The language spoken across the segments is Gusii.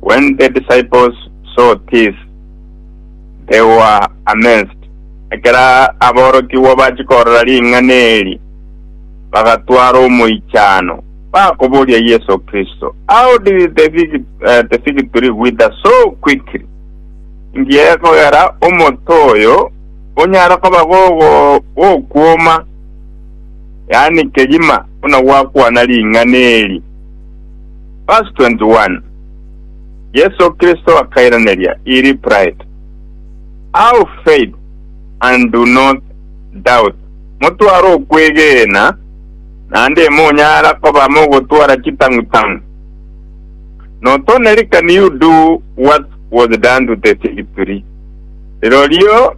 When the disciples saw this, they were amazed. Ekero aborokigwa bachia korora ring'ana eri, bagatwara omoichano, bakoboria Yeso Kristo, How did the fig, uh, the fig tree wither so quickly? Inki egekogera omote oyo onyare koba gogo- gokwoma, yaani kegima, buna gwakwana ring'ana eri? Verse 21, Yeso Kristo akairaneria iri pride, Have faith and do not doubt, motware okwegena, naende monyara koba mogotwara chitang'u-tang'u. Not only can you do what was done to the fig tree, rirorio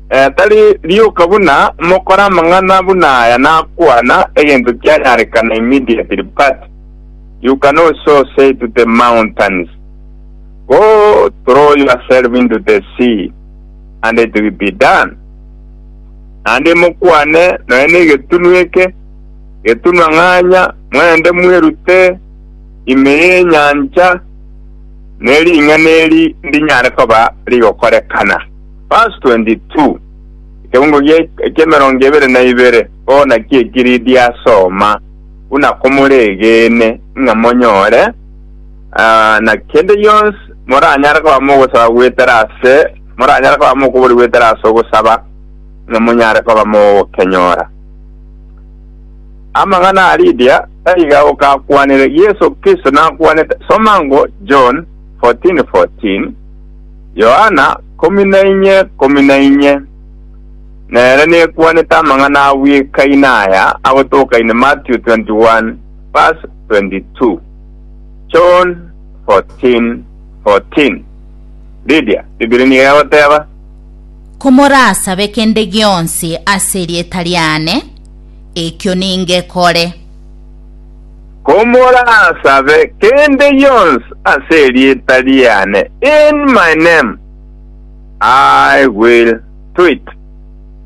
eh, tari rioka buna mokore amang'ana buna aya nakwana egento kianyarekana immediately, but You can also say to the mountains, Go throw yourself into the sea, and it will be done. Naende mokwane nonya negetunu eke, Getunu ang'anya, mwende mwerute ime y'enyancha, ne ring'ana eri ndinyare koba rigokorekana. Verse 22, Ekebungo gie- eki'emerongo ebere na ibere, bono naki eki Lidia asoma. buna komoregeene ng'a monyore, aa, na kende gionsi moranyare koba mogosaba goetera ase, moranyare koba mokoboria goetera ase ogosaba, ng'a monyare koba mogokenyora. Amang'ana a Lidia taiga gokakwanire, Yeso Kristo nakwanete, soma ngo, John 14:14, Yohana, Komi na inye, komi na inye. Nere nekwanete amang'ana a bwekaina aya agotokaine Matthew 21 verse 22, John 14, 14. Lydia, Biblia nigo egoteba, Komorasabe kende gionsi ase erieta riane, ekio ningekore. Komorasabe kende yonsi ase erieta riane, in my name. I will do it,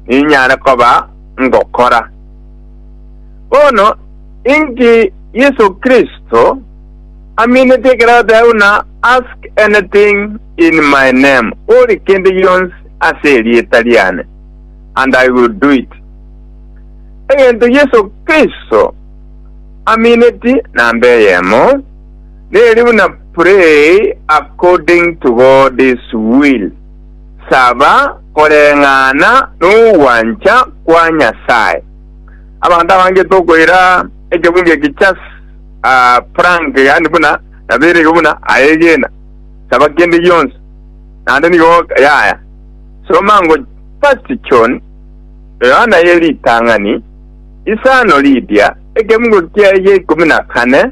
ninyare koba ngokora. Bono, inki Yeso Kristo aminete ekero agoteba buna ask anything in my name, ore kende gionsi ase erieta riane, and I will do it? Egento Yeso Kristo amineti namba eyemo, Neri buna pray according to God's will, saba koreng'ana nogwancha kwa Nyasae. Abanto abange tokoira ekebunge eki just a prank yaani buna naberege buna aye egena saba kende gionsi naende nigo yaya. Soma ngo first John, Yohana ye ritang'ani, isano riria, ekebungo kiaye gia ikomi na kane,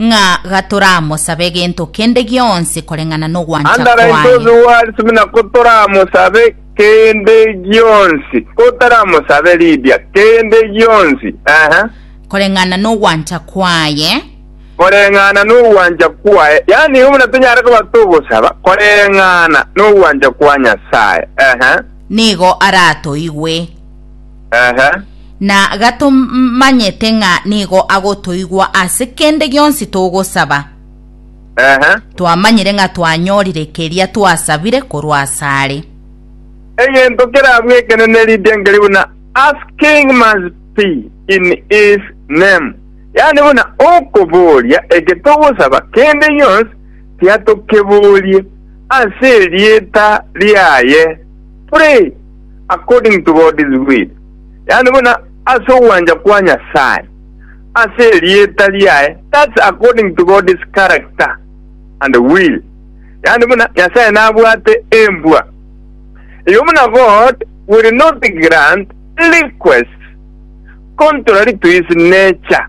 ng'a gatoramosabe gento kende gionsi koreng'ana nogwancha Andara inse kwaye. ose oariswe buna kotoramosabe kende gionsi, kotaramosabe Lydia kende gionsi, ehe, Koreng'ana nogwancha kwaye. koreng'ana nogwancha kwaye. Yaani igo buna tonyare koba togosaba koreng'ana nogwancha kwa Nyasaye, ehe. Nigo aratoigwe. Ehe. na gatomanyete ng'a nigo agotoigwa ase kende gionsi togosaba. Ehe. Twamanyire ng'a twanyorire keria twasabire korwa asare. Egento kerabwo ekenene ritengeri buna asking must be in his name, yaani buna okoboria eke togosaba kende gionsi tiatokeborie ase erieta riaye. Pray. according to God's will, yaani buna ase ogwancha kwa Nyasae, ase erieta riaye, that's according to God's character and will, yaani buna Nyasae nabwate embwa. Erio buna God will not grant requests contrary to his nature,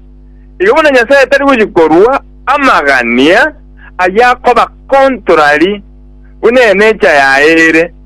erio buna Nyasae tari gochia korua amagania ayia koba contrary buna enature yaye ere,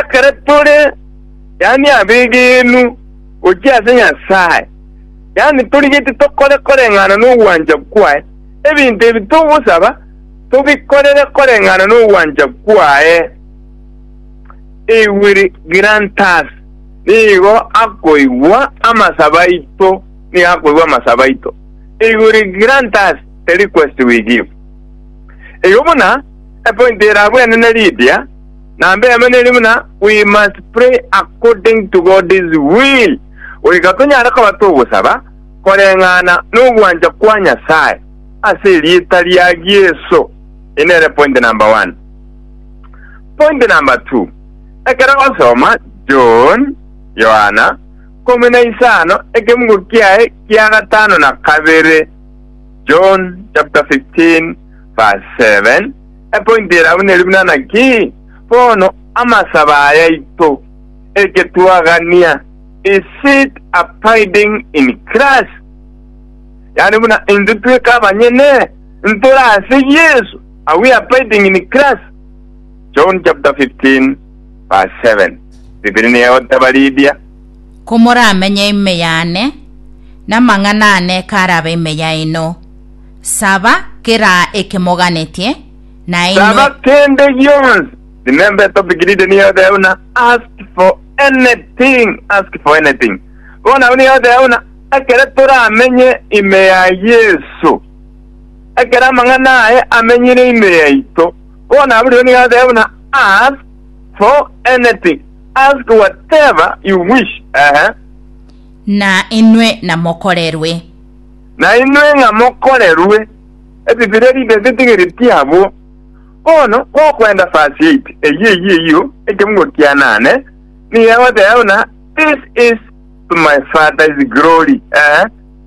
Ekero tore, yaani abegenwa, gochia ase Nyasae, yaani torigeti tokore koreng'ana nogwancha kwaye, ebinto ebi togosaba tobikorere koreng'ana nogwancha kwaye, he will grant us, nigo akoigwa amasabo aito, nigo akoigwa amasabo aito, he will grant us the request we give. Igo buna epointi erabwene ne Lydia, Na mbeema neri buna, We must pray according to God's will, goika tonyare koba togosaba koreng'ana nogwancha kwa Nyasae ase erieta ria Yeso. Eye nere point number one. Point number two, ekero osoma John, Yohana, komi na isano ekemugo kiaye kia gatano na kabere, John chapter 15 verse 7, Epointi ere abwo neri buna naki bono amasaba ayaito, egetwagania, Is it abiding in Christ? Yaani buna intwe tweka abanyene ntore ase Yesu, are we abiding in Christ? John chapter 15 verse 7. Bibilia nigo egoteba Lidia, Komoramenye ime yane, na amang'ana ane karabe ime yaino, Saba kera eke moganetie, na inwe Saba kende gionsi. Remember a topic reading nigo egoteba buna ask for anything, ask for anything. Bono abwo nigo egoteba buna ekero toramenye ime ya Yeso, ekero amang'ana aye amenyire ime yaito, bono abwo rirorio nigo egoteba buna ask for anything, ask whatever you wish. Ehe. na inwe namokorerwe. nainwe ng'a mokorerwe ebibira ebibe bitigereti abwo. Bono gokwenda verse 8 eyio eyio eyio ekemugo kianane nigo egoteba buna this is to my Father's glory eeh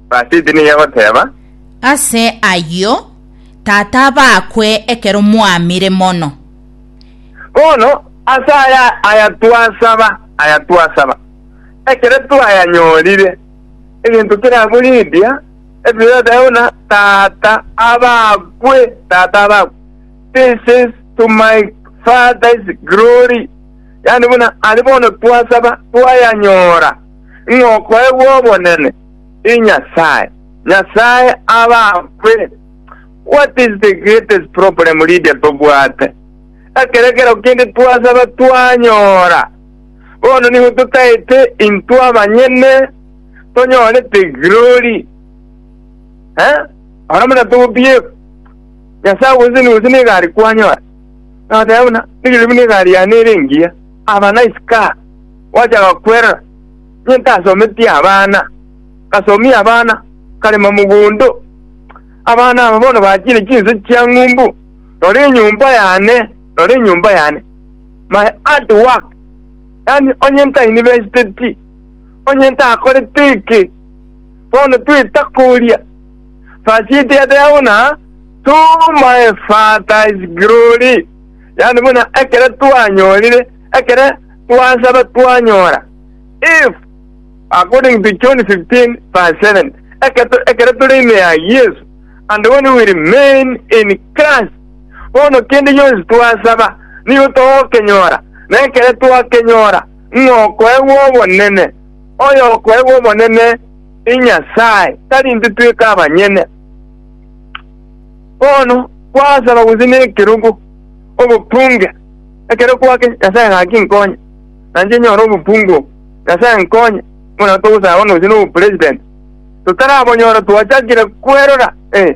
verse 8 nigo egoteba Ase ayio Tata abakwe ekero mwamire mono. Bono ase aya aya twasaba aya twasaba ekero twayanyorire. egento keraborendia ebere ase tata buna tata abakwe tata abakwe this is to my father's glory yani buna ari bono twasaba twayanyora ng'okoegwa obonene i nyasaye nyasaye abakwe what is the greatest problem lydia tobwate ekero ekero kende twasaba twanyora Bono nigo totaete intwe abanyene tonyorete glory, eh, oro buna togobiekwa Nyasae obosemi gose negari kwanyora. Nabatebia buna, Rigirii buna egari yane ere engiya, aba nice car, gwachaka kwerora, inye ntasometie abana, ngasomia abana, nkarema mogondo, abana aba bono bachire chinse chiang'umbu, rora enyomba yane, rora enyomba yane, my hard work, yaani onye ntainivesteti, onye ntakoreti eke, bono twita koria, verse eye teyateba buna, to my Father's glory, yaani buna ekero twanyorire, ekero twasaba twanyora, if according to John 15 verse 7, ekero tore ime ya Yesu, and when we remain in Christ, Bono kende gionsi twasaba nigo togokenyora, na ekero twakenyora, ng'a okoegwa obonene. Oyokoegwa obonene n'Nyasae, tari intwe tweka abanyene. Bono kwasaba gose nekerogo, obokunge, ekero kwake, Nyasae gaki nkonye, nanche nyore obokungu obo, Nyasae nkonye, buna togosaba bono gose nobopresident, totarabonyora twachakire kwerora, eh.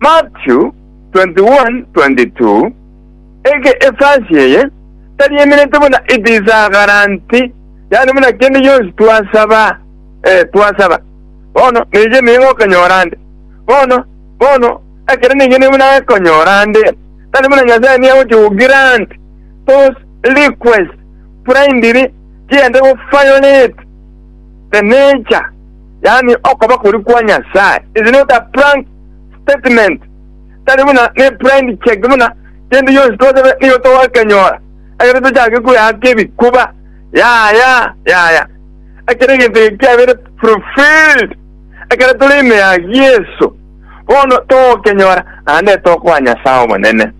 Matthew 21:22, Eke efasi eye tari emerete buna etisagaranti, yaani buna kende gionsi twasaba, ee, twasaba, bono neche nigo egokonyora nde. Bono, bono, ekero nigo nigo buna gekonyora nde, tari buna Nyasae nigo agochia kogirant those requests blindly chiende goviolate the nature, yaani okoba koria kwa Nyasae is not a prank. statement tari buna ne blind check buna kende yonsi twasebe nigo togokenyora ekero tochake kweaka ebikuba yaya yaya ekero egento eke kiabere fulfilled ekero tore ime ya yesu bono togokenyora naende tokoa nyasaye omonene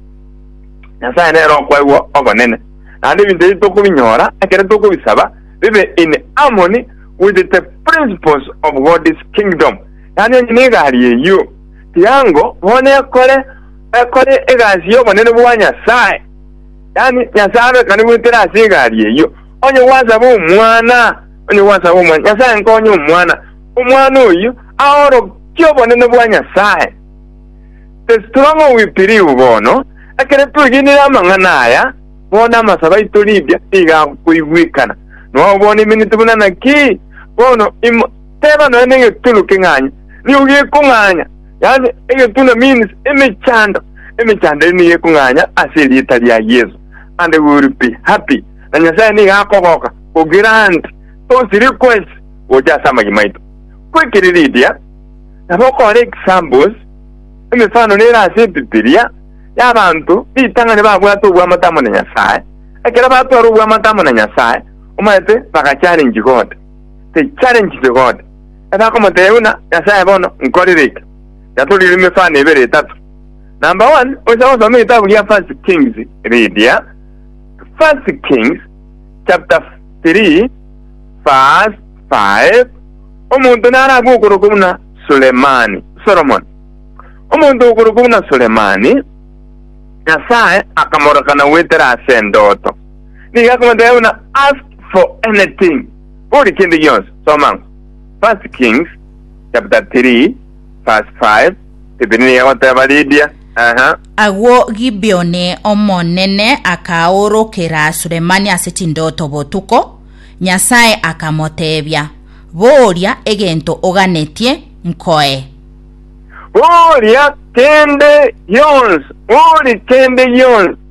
nyasaye nere okwaigwa ogonene naende ebinto ebi tokobinyora ekero tokobisaba bibe in harmony with the principles of god's kingdom Yaani onye negari eyio tiango bono ekore ekore egasi y'obonene bwa Nyasae, yaani Nyasae abekane goetera ase egari eyio, onye gwasaba omwana, onye gwasaba omwana, Nyasae nkonye omwana, omwana oyio aorokie obonene bwa Nyasae. The stronger we believe bono, ekero twegenire amang'ana aya, bono amasabe aito Lydia nigo agokoigwekana. Nao bono eminiti buna naki? Bono imo Teba nonya negetunu king'anya nigo gekong'anya, yaani egetuna means emechando, emechando eria nigo ekong'anya ase erieta ria Yeso and we will be happy na Nyasaye nigo akogoka go grant those requests gocha ase amagima aito. Kwekere Lydia nabo okore examples, emefano nere ase Ebibilia, y'abanto ritang'ani babwate obwamate amo na Nyasaye. Ekero batwara obwamate amo na Nyasaye, omanyete bagachalengi God. they challenge the God. Ase akomotebia buna, Nyasae bono nkorire eke. Yatorire emefano ebere etato. Number one, oise gosoma egetabu gia First Kings riria. First Kings chapter 3 verse 5 omonto naragwe okoroka buna Sulemani, Solomon. Omonto okoroka buna Sulemani, Nyasae akamorokana goetera ase endoto. Nigo akomotebia buna, Ask for anything, bori kende gionsi. Soma First Kings chapter 3 verse 5. Stephen nigo agoteba, Ridia. Aha. Agwo Gibeoni Omonene akaorokera Sulemani ase chindoto botuko, Nyasae akamoteebia, Boria egento oganetie, nkoe. Boria kende gionsi, bori kende gionsi.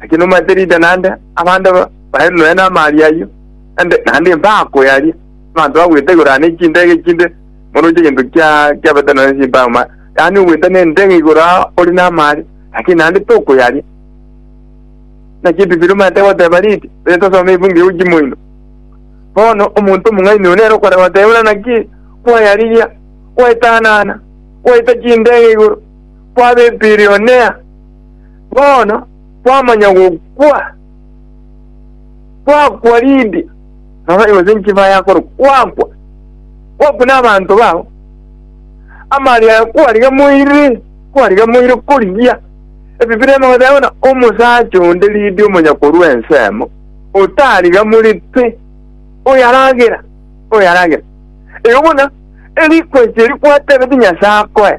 Naki nomanyete rinde naende abande bare nonya namaaria ayio, naende naende mbakoyaria. Abanto bagwete igoro ane chindege chinde moroche egento kia kiabete nonya chimbao ma, yaani ogwete nendege igoro ao ore namaaria, lakini naende tokoyaria. Naki Ebibiri omanyete goteba riri, onye tosoma efungu eye gochia moino. Bono omonto omong'aini oyo nere okorega goteba buna naki kwayarigia, gwaetanana, gwaita chindege igoro, kwaba ebilionea, Bono kwamanya gokwa kwakwa Lidia, nonya gose nchiba y'akoro kwakwa, kwakwa n'abanto bao, amani aye kwariga moire, kwariga moire korigia. Ebibira ema goteba buna omosacha onde Lidia omonyakorwa ensemo, otariga more pi, oyaragera, oyaragera. Eyo buna erikweche eri kwatebeti Nyasae akoe.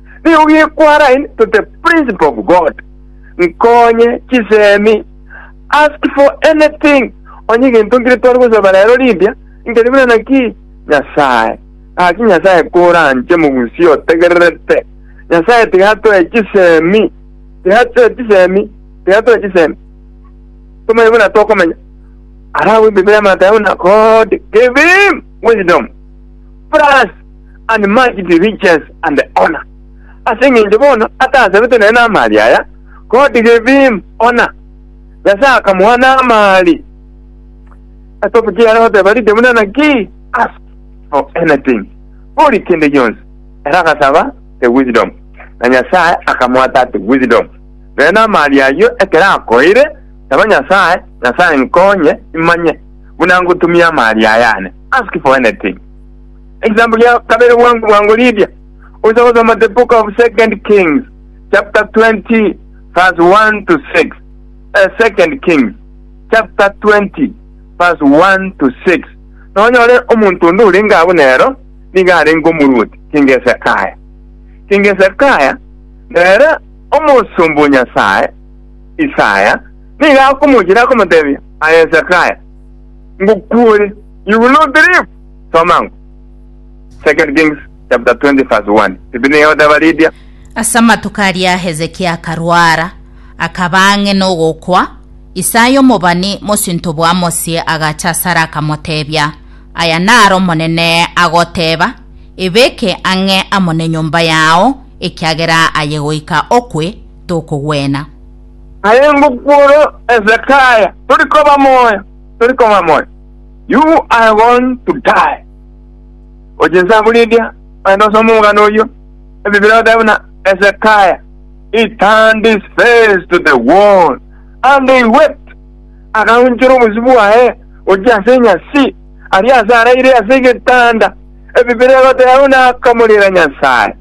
Nigo gequarain to the principle of God, Nkonye chisemi, ask for anything, onye egento nkire tware gosaba rero rimbia, nkeri buna naki Nyasae. Gaki Nyasae koranche mogusie otegererete. Nyasae tigatoe chisemi, tigatoe chisemi, tigatoe chisemi. Tomanye buna tokomenya. Arabu Biblia mataya buna God give him wisdom. Plus and mighty riches and honour, ase engencho bono atasabete nere namari aya, God gave him honour, Nyasae akamoa namari. Etopic yare goteba rinde buna naki, ask for anything, bori kende gionsi. Ere agasaba the wisdom, na Nyasae akamoa that wisdom. Nere namari ayio ekero akoeire, saba Nyasae, Nyasae nkonye imanye buna ngotumia amari aya ane, ask for anything. Example ria kabere bwango bwango riria ocha gosoma the book of second kings chapter 20 verse 1 to 6 eh, second kings chapter 20 verse 1 to 6 nonyore omonto onde orenge abo nero niga arenge omoruoti kingesekaya kingesekaya nere omosombo nyasaye isaya niga akomochira akomotebia ayesekaya ngokuore you will not live Soma ng'o? Second Kings chapter 20 verse 1. Tibi Neyoda baridia. Ase amatuko aria Hezekia akarwara, akaba ang'e nogokwa. Isaya omobani, mosinto bw'Amosi, agacha asare akamotebia, Aya naro Omonene agoteba, Ebeke ang'e amo nenyomba yao, ekiagera aye goika okwe, tokogwena. Aye ngokwa ore Hezekia, tori koba moyo, tori koba moyo. You are going to die. Gochia inse abwo Lidia, ogende osome omogano oyio. Ebibira egoteeba buna Hezekiah, He turned his face to the wall, and he wept. Agaunchora obosio bwaye gochia ase enyasi, aria ase araire ase egetanda. Ebibira egoteeba buna akamorera Nyasae.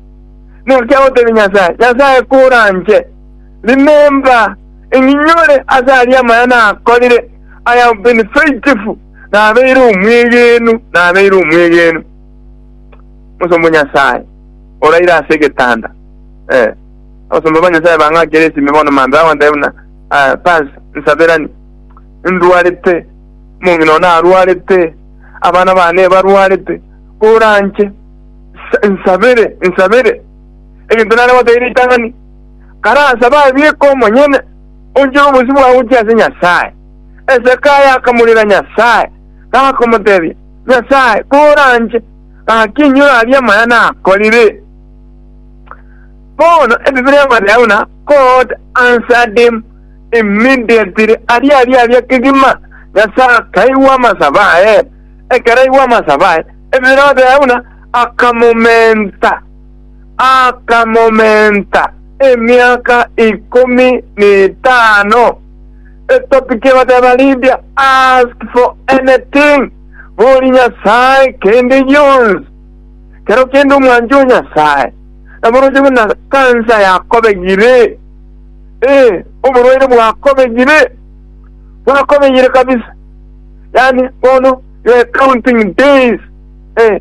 Naki agoteebia Nyasae, Nyasae koranche, remember, ing'inyore ase aria amaya nakorire, I have been faithful, nabeire omwegenu, nabeire omwegenu. Omosomba o Nyasae, oraire ase egetanda, eh, abasomba ba Nyasae bang'akire esimi bono mambia bagontebia buna, ah, Paz, nsaberani, ndwarete, omong'ina one arwarete, abana bane barwarete, koranche, nsa- nsabere, nsabere. Egento nare goteira ritang'ani, karasabe abieke omonyene, Onchera obosio bwao gochia ase Nyasae. Hezekia akamorera Nyasae, gakomotebia, Nyasae, bora nche, gaki inyora aria amaya nakorire. Bono ebibe amo nao na God answered him immediately aria aria aria kegima Nyasae akaigwa amasabo aye. Ekero aigwa amasabo aye, ebibe amo nao na akamomenta. akamomenta emiaka ikomi n'etano. The topic ye goteba Lydia ask for anything bori Nyasae kende gionsi. Kero kende omwanche o Nyasae naboroche buna kansa yakobegire, eh, oborwaire bwakobegire, bwakobegire kabisa, yaani bono you are counting days, eh,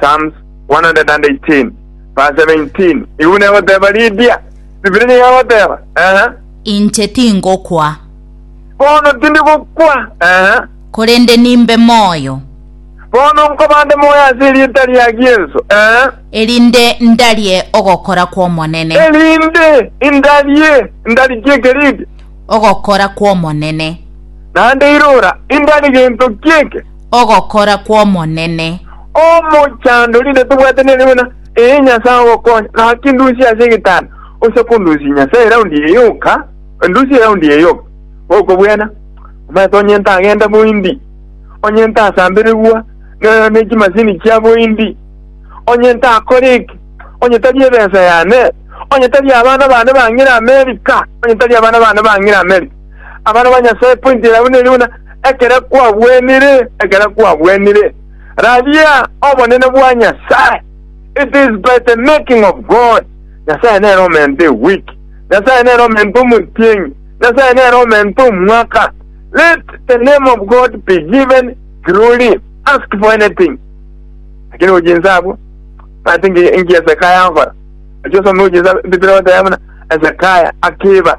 Psalms 118 verse 17 igu negoteba ridia Bibilia nigo egoteba ehe Inche tingokwa, bono tindi gokwa ehe korende nimbe moyo, bono nkobande moyo ase erieta ria Yesu ehe erinde ndarie ogokora kw'Omonene, erinde indarie ndarikie keridi ogokora kw'Omonene. naende irora indari gento kieke ogokora kw'Omonene. Omochandori inde tobwate nere buna ee Nyasae ogokonya, naki ndusie ase egetanda, ocha kondusia Nyasae eraundi eye yoka, endusie eraundi eye yoka. Gokobwena, omanyete onyente agende boindi, onyente asamberegwa ne, ne chimasini chia boindi, onyente akore eke, onye tari ebesa yane, onye tari abana bane bang'ire Amerika, onye tari abana bane bang'ire Amerika. Abana ba Nyasae, pointi yabu neri buna ekere kwagwenire, ekere kwagwenire, raria obonene bwa Nyasae. It is by the making of God. Nyasae nere omente ewiki. Nyasae nere omente omotienyi. Nyasae nere omente omwaka. Let the name of God be given glory. Ask for anything. Lakini ujinsa abwo, ati nki Hezekiah ankora? Achi osome ujinsa Biblia oteba buna Hezekiah akiba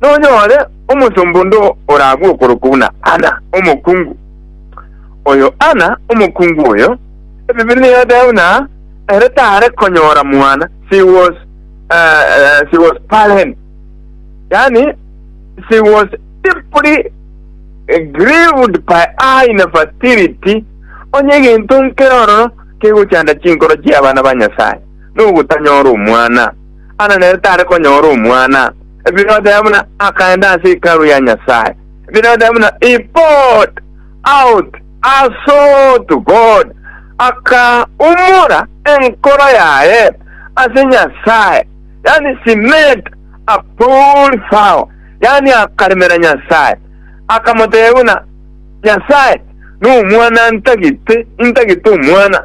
nonyore omosomba onde oragwe okorokwa buna Anna omokungu. Oyo Anna omokungu oyo, Ebibiri niyoteeba buna ere tare konyora mwana, she was, uh, uh, she was barren, yani she was deeply grieved by her infertility, onye egento nkere ororo kegochanda chinkoro chi'abana ba Nyasae, nogotanyora omwana. Ana nere tare konyora omwana, Herode buna akaenda ase Hekalu ya Nyasae. Herode buna Ipot out aso to God, akaumora enkoro yaye ase Nyasae, yaani cement a pool thou, yaani akaremera Nyasae, akamotebia buna, Nyasae, nomwana ntagete, intagete omwana.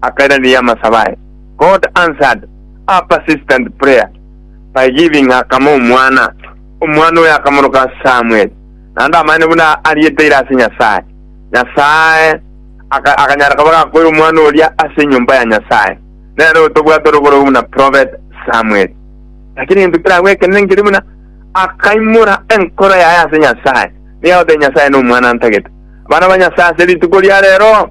akairaneria amasabo aye. God answered her persistent prayer by giving her kama omwana. Omwana oyo akamoroka Samuel, naende amanyete buna arieteire ase Nyasae. Nyasae aka, akanyara koba gakoira omwana oria ase enyomba ya Nyasae. Nere otobwate orogoro buna prophet Samuel. Lakini egento keragwo ekenene nkeri buna akaimora enkoro yaye ase Nyasae, nigo agotebia Nyasae nomwana antagete. Abana ba Nyasae ase rituko ria rero,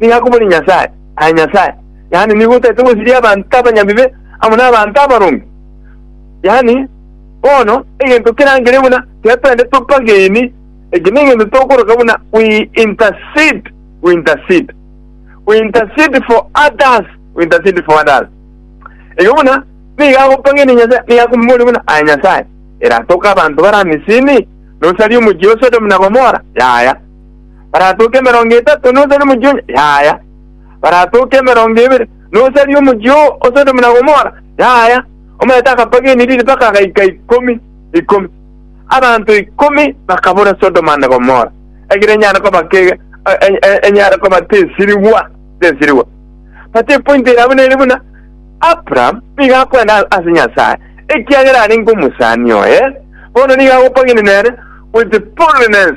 nigo akomori Nyasae, aye Nyasae, yaani nigo otaete gosiria abanto abanyabibe amo nabanto abaronge. Yaani, bono egento kerangere buna tiga twende topageni, eki negento tokoroka buna we intercede, we intercede, we intercede for others, we intercede for others. Ege buna nigo agopageni Nyasae, nigo akomomori buna aye Nyasae, eratoka abanto bara Misini, nosarie omochie o Sodomu na Gomora, yaya. baratooke emerongo etato nosaria omochie onye, yaya, baratooke emerongo ebere nosaria omochie oo o Sodomu na Gomora, yaya. Omanyete akapageni riri mpaka agaika ikomi ikomi. Abanto ikomi bakabora Sodomu ande Gomora, egira enyare koba ke e- e- e- enyare koba tesirigwa tesirigwa. But epointi ere abwo nere buna Abraham nigo akwenda ase Nyasaye, ekiagera arenge omosani oye, bono nigo agopageni nere with fullness.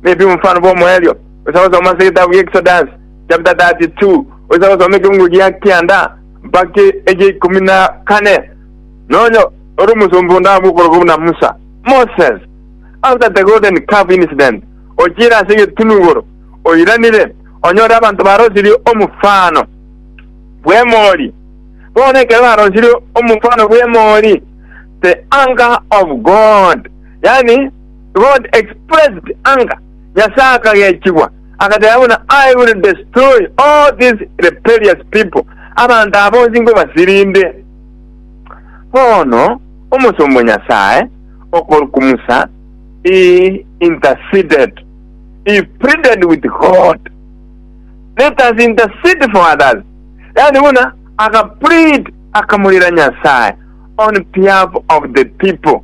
Maybe mfano bwa omoerio osa gosoma ase egetabu gia Exodus chapter 32 osa gosoma ekeungu gia kianda mpaka egia ikomi na kane nonya ore omosomba onde abe okoroka buna Musa Moses after the golden calf incident ochire ase egetunugoro oiranire onyore abanto barosirie omofano bw'emori bono ekero barosirie omofano bw'emori the anger of God yani God expressed anger, Nyasae akagechigwa, agateba buna, I will destroy all these rebellious people, abanto aba bonsi nkobasirinde. Bono omosomba o Nyasae okorokwa Musa, he interceded, he pleaded with God. Let us intercede for others. Yaani buna akaplead, akamorera Nyasae on behalf of the people.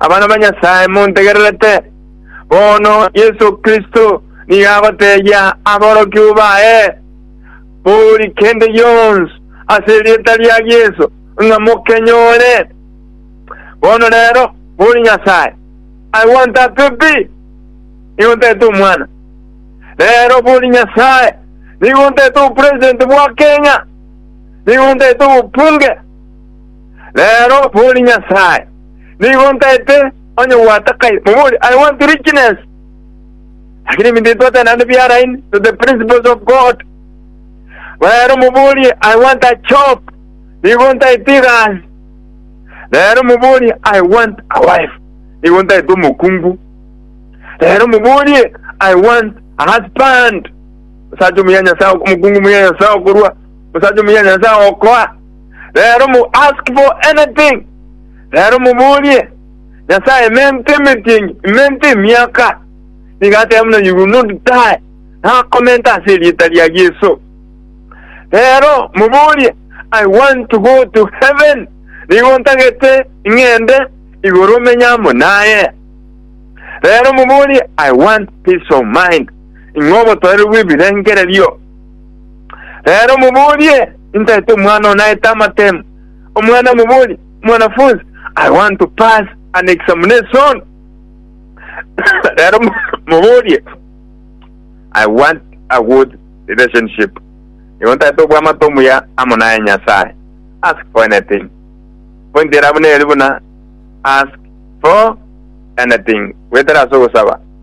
Abana ba Nyasae, montegererete. Bono Yeso Kristo nigo agotebia aborokigwa baye, Bori kende gionsi ase erieta ria Yeso, ng'a mokenyore. Bono rero, bori Nyasae, I want a baby, nigo ntete omwana. Rero bori Nyasae, nigo ntete obopresident bwa Kenya, nigo ntete obopunge. Reero bori Nyasae, nigo ntaete onye gwatakai, mobori, I want richness. Lakini ebinto ebi twatae naende biaraini, to the principles of God. Reero moborie, I want a job. Nigo ntaete egasi. Reero moborie, I want a wife. Nigo ntaete omokungu. Reero moborie, I want a husband. Osacha omuya Nyasae, omokungu muya Nyasae okorua, osacha omuya Nyasae okoa. Reero mo ask for anything, reero moborie Nyasae emente emetienyi, emente emiaka. Nigo ateba buna you will not die, nakomenta ase erieta ria Yeso. Reero moborie I want to go to heaven, nigo ntagete ing'ende igoro menye amo naye. Reero moborie I want peace of mind, ing'obotoereru bw'ebirengererio. Reero moborie, Intaete omwana oo naete amatemo? Omwana amoborie, Mwanafunzi, I want to pass an examination. Reero moborie, I want a good relationship. Nigo ntaete obwamate omuya amo naye Nyasae. Ask for anything. Pointi ere abwo neri buna ask for anything, goetera ase ogosaba.